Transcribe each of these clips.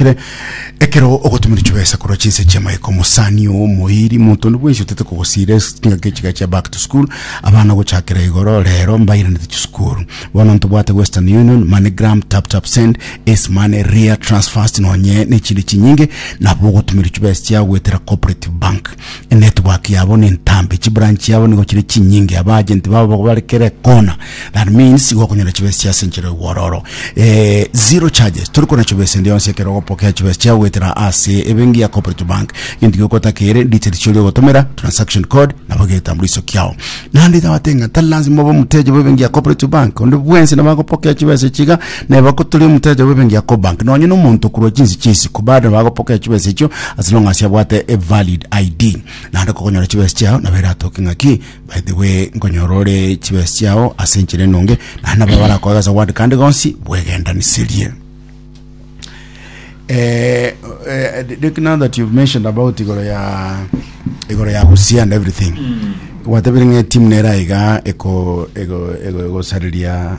Ere ekero ogotumire chibesa korwa chinse chi'amaika omosani oo omoiri monto onde bwensi otete kogosiira ase chingaki echiga chia back to school abana gochakera igoro rero mbairanete chisukuru bono ntobwate western union moneygram tap tap send ace money ria transfast nonye nechinde chinyinge nabo ogotumire chibesa chiago goetera cooperative bank Enetwork yabo nentambe, chibrand chiabo nigo chire chinyinge, abaagent babo bako bare kera ekona, that means igo okonyora chibesa chia ase enchera y'ogwororo. Eh, zero charges, tori kona chibesa ende yonsi ekero ogopokea chibesa chiao goetera ase ebenki ya Cooperative Bank. Egento gioka otakeire, details chiaoria ogotomera, transaction code, nabo egetambuliso kiao. Naende tabate ng'a tari lazima obe omoteja bw'ebenki ya Cooperative Bank, onde bwensi nabo agopokea chibesa echi iga, Neba koturi omotayacha bw'ebenki ya Cobank nonye na omonto okorwa chinsi chia isiko bande bagopokea chibesa echio as long as abwate a valid ID. Naende kogonyora chibesa chiao nabo eratoke ng'aki by the way nkonyora ore chibesa chiao ase enchera enonge naende nabo barakoe gose ogwande kandi gonsi bwegendaniseriie. Eh, eh, the- the- now that you've mentioned about igoro ya igoro ya Busia and everything gwatebirie ng'a etimu nere aiga eko ego ego egosareria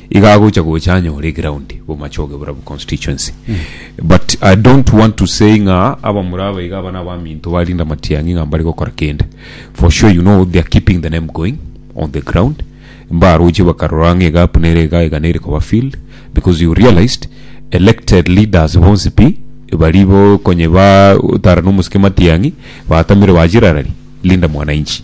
Iga agocha gocha anyore eground bomache ogebora bu constituency but I don't want to say ng'a abamura aba iga aba nabaminto ba Linda Matiang'i ng'a mbare gokora kende for sure you know they are keeping the name going on the ground mbaroche bakarora ng'a egap nere iga iga nere koba filled because you realized elected leaders bonsi pi bari bo konye ba tara nomosike Matiang'i batamire bachirarari Linda Mwananchi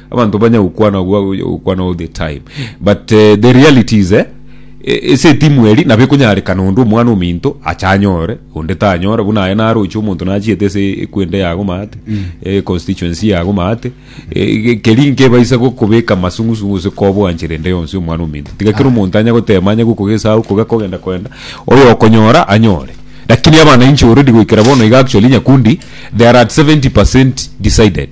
Abanto banya gokwana agwo agocha gokwana all the time but eh, the reality is eh, e- ase etimu eri nabo ekonyarekana onde omwana ominto acha anyore onde tanyora buna aye naroche omonto nachiete ase ekwende yago maate eh, constituency yago maate eh, ge- keri nkebaisa gokobeka masung'usungu ase kobwanchera ende yonsi omwana ominto tiga kera omonto anya gotema anya gokogesao okoga kogenda kwenda oyo okonyora anyore lakini abananchi already goikera bono iga actually nyakundi they are at 70% decided